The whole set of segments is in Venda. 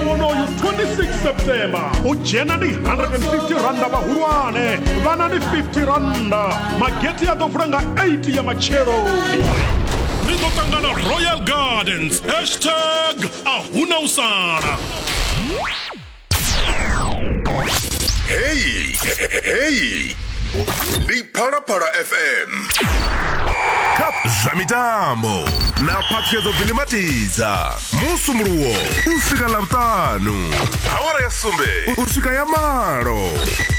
unoyu 26 september u dzhena ni 150 randa vhahulwane vhana ni 50 randa mageti a ḓo vula nga 8 ya matshelo ni ḓo ṱangana royal gardens hashtag a huna u sala heyi heyi ndi phalaphala fm kha zwa mitambo na phaṱhuyedzo bvinimatidza musumuluwo u swika ḽavhuṱanu awara ya sumbe u swika ya malo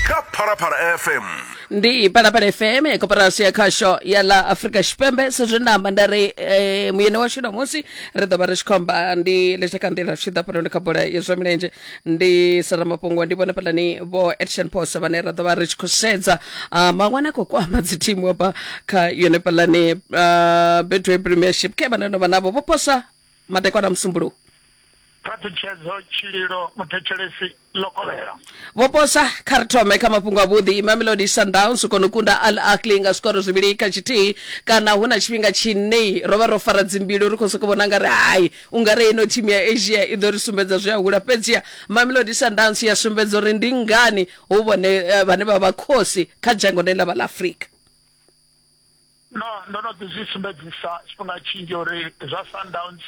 kha phalaphala fm ndi phalaphala fm ya koporasi ya khasho ya ḽa afrika tshipembe sezwi nda amba nda ri eh, muyeni washu ṋamusi ri ḓo vha ri tshi khou amba ndi letsha kha nḓila tshi ḓa fhanoni kha bola ya zwa milenzhe ndi sara mafhungo ndi vhone fhalani vho action post vhane ra ḓo vha ri tshi khou sedza ah, maṅwana a khou kwama dzithimu hafha kha yone fhalani ah, betway premiership ke vhane no vha navho vho posa Madekwana a Musumbuluwo. Phaṱhutshedzo, Tshililo, Muthetshelesi, ḽo kovhela. Vho posa kha ri thome kha mafhungo avhuḓi. Mamelodi Sundowns u kona u kunda Al Ahly nga zwikoro zwivhili kha tshithihi. Kana hu na tshifhinga tshine ro vha ro fara dzimbilu ri khou sokou vhona nga ri hai u nga ri ino thimu ya Asia i ḓo ri sumbedza zwi a hula. Fhedziha Mamelodi Sundowns ya sumbedza uri ndi ngani hu vhone eh, vhane vha vha khosi kha dzhango ḽe ḽa vha ḽa Afrika. No, ndo no ḓi zwi sumbedzisa tshifhinga tshinzhi uri zwa Sundowns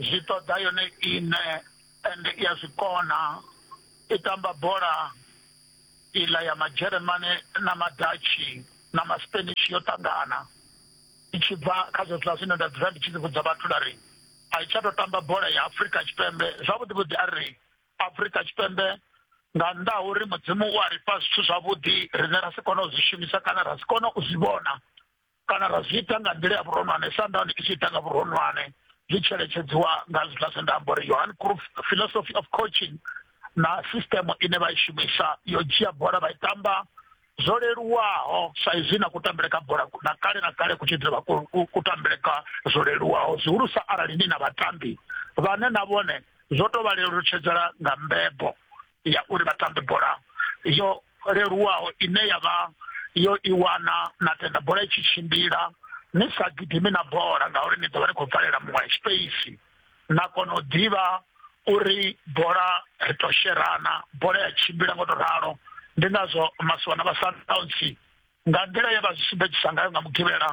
zwi ṱoḓa yone iṋe ende i a zwi kona i tamba bola iḽa ya Madzheremane na Madatshi na Maspanish yo ṱangana i tshi bva kha zwezwiḽa zwine nda dzula ndi tshi ḓi vhudza vhathu nda ri a i tsha tou tamba bola ya Afrika Tshipembe zwavhuḓi vhuḓi a ri afurika tshipembe nga nnḓa ha uri mudzimu u a ri fha zwithu zwavhuḓi rine ra si kone u zwi shumisa kana ra si kone u zwi vhona kana ra zwi ita nga nḓila ya vhuronwane sandani i tshi ita nga vhuronwane zwi tsheletedziwa nga zwiḽa zwe nda amba uri yohan cruf philosophy of coaching na system ine vha i shumisa yo dzhia bola vha i tamba zwo leluwaho sa izwi na kutambele ka bola na kale na kale ku tshi dzula kutambele ka zwo leluwaho zwihulusa arali ni na vhatambi vhane na vhone zwo tou vha lelutshedzela nga mbebo ya uri vha tambe bola yo leluwaho ine ya vha yo i wana na tenda bola i tshi tshimbila ni sa gidimi na bola ngauri ni ḓo vha ni khou bvalela muṅwe space na kona u ḓivha uri bola ri to sherana bola ya tshimbila ngo to ralo ndi ngazwo masiwana vha sundowns nga nḓila ye vha zwi sumbedzisa ngayo nga mugivhela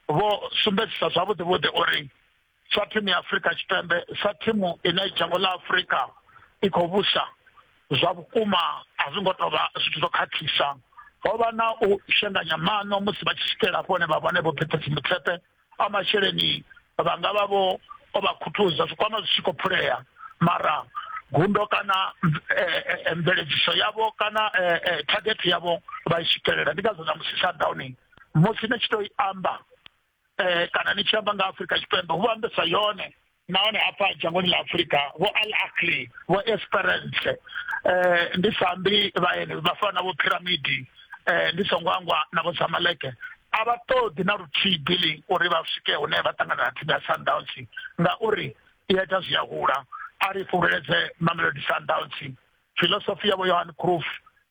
vho sumbedzisa zwavhuḓi vhuḓi uri sa thimu ya afurika tshipembe sa thimu ine dzhango ḽa afurika i khou vhusa zwa vhukuma a zwi ngo to vha zwithu zwo khakhisa ho vha na u shenganya maṋo musi vha tshi swikela hafho hune vha vhone vho phethe dzimutshepe a masheleni vha nga vha vho o vha khuthuza zwikwama zwi tshi khou phulea mara gundo kana eh, eh, eh, mveledziso yavho kana target yavho vha i swikelela ndi ngazwo na musi shutdowning musi ni tshi to i amba kana ni tshi amba nga afurika tshipembe hu vha ambesa yone nahone hafha dzhangoni ḽa afurika vho al akli vho esperance eh, ndi sambi vhaeni vha fana na vho piramidi eh, ndi songo angwa na vho samaleke a vha ṱoḓi na luthihi billing uri vha swike hune vha ṱangana na thimu ya sundowns ngauri i ya ita zwi a hula a ri fhululedze mamelodi sundowns filosofi yavho yohan croof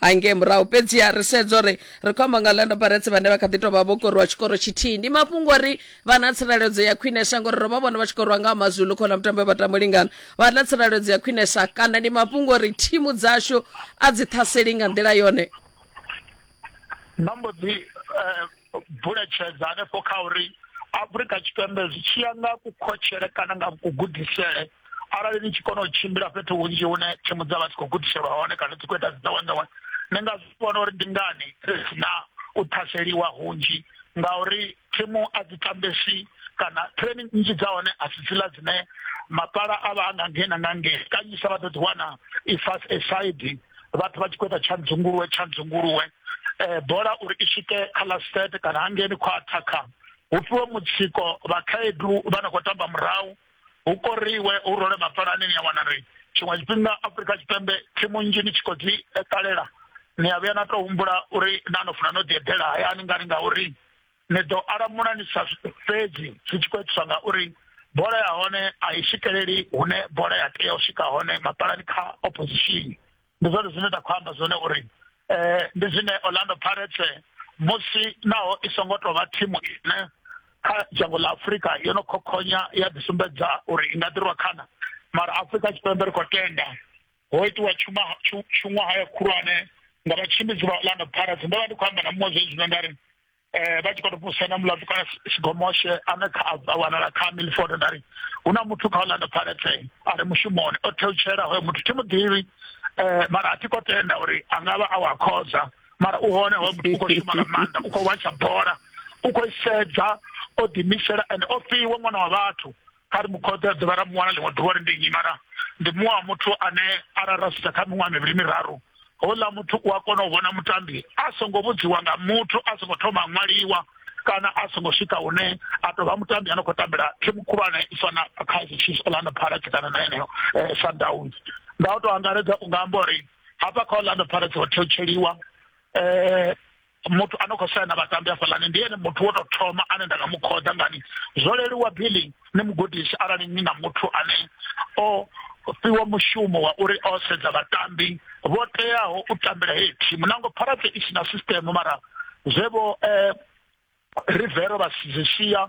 hangei murahu fhedziha ri sedza uri ri khou amba nga orlando pirates vhane vha kha ḓi tou vha vho koriwa tshikoro tshithihi ndi mafhungo uri vha na tsireledzo ya khwinesa ngori ro vha vhona vha tshi koriwa nga mazulu khona mutambo we vha tamba lingana vha na tsireledzo ya khwinesa kana ndi mafhungo uri thimu dzashu a dzi ṱhaseli nga nḓila yone vha mbo dzi eh, buletshedza hanefho kha uri afurika tshipembe zwi tshi ya nga kukhotshele kana nga kugudisele arali ni tshi kona u tshimbila fhethu hunzhi hune thimu dza vha dzi khou gudiselwa hone kana dzi khou ita dziḓowenḓowe ni nga zwi vhona uri ndi ngani ri si na u ṱhaseliwa hunzhi ngauri thimu a dzi tambesi kana training nnzhi dza hone a si dziḽa dzine mapala a vha a nga ngena nga nge kanyisa vha ḓo ḓiwana i fast aside vhathu vha tshi khou ita tshandzunguluwe tshandzunguluwe eh, bola uri i swike kha last set kana hangeni khwaṱha kha hu fhiwe mutsiko vhakhaedu vha no khou tamba murahu hu koriwe hu role mapalani ni a wana ri tshiṅwe tshifhinga afrika tshipembe thimu nnzhi ni tshi khou dzi eh, ṱalela ni a vhuya na tou humbula uri na no funa no ḓi eḓela hayani ngani ngauri ni ḓo alamula ni sa fhedzi zwi tshi khou itiswa ngauri bola ya hone a i swikeleli hune bola ya tea u swika hone mapalani kha opposition ndi zwone zwine nda khou amba zwone uri um ndi zwine orlando pirates musi naho i songo tou vha thimu ine kha dzhango ḽa afurika yo no khokhonya ya ḓisumbedza uri i nga ḓirwa khana mara afurika tshipembe ri khou tenda ho itiwa tshuṅwahaya khulwane nga vhatshimbidzi vha orlando pirates ndo vha ndi khou amba na muṅwe zwezwino nda ri eh vha tshi khou vhusa na mulandu kana tshigomoshe ane kha a wanala kha Milford nda ri hu na muthu kha Orlando Pirates a re mushumoni o theutshela hoyo muthu thi muḓivhi eh mara a thi khou tenda uri a nga vha a wa khoza mara u hone hoyo muthu u khou shuma nga maanḓa u khou watsha bola u khou sedza o ḓimisela and o fhiwa ṅwana wa vhathu kha ri mu khothe a dovha ra mu wana ḽiṅwe ḓuvha ri ndi nnyi mara ndi muṅwe wa muthu ane arali ra sedza kha miṅwaha mivhili miraru houḽa muthu u a kona u vhona mutambi a songo vhudziwa nga muthu a songo thoma a ṅwaliwa kana a songo swika hune a tou vha mutambi a no khou tambela thimu khulwane i fana kaizer chiefs orlando pirates kana na yeneyo eh, sundowns nga u tou angaredza u nga amba uri hafha kha orlando pirates ho thetsheliwa um eh, muthu ano khou swaya na vhatambi hafhaḽani ndi ene muthu wo tou thoma ane nda nga mu khoḓa ngani zwo leluwa billing ni mugudisi arali ni na muthu ane o fhiwa mushumo wa uri o sedza vhatambi vho teaho u tambela heyi thimu nango pharate i si na system mara zwe vho um rivero vha zwi sia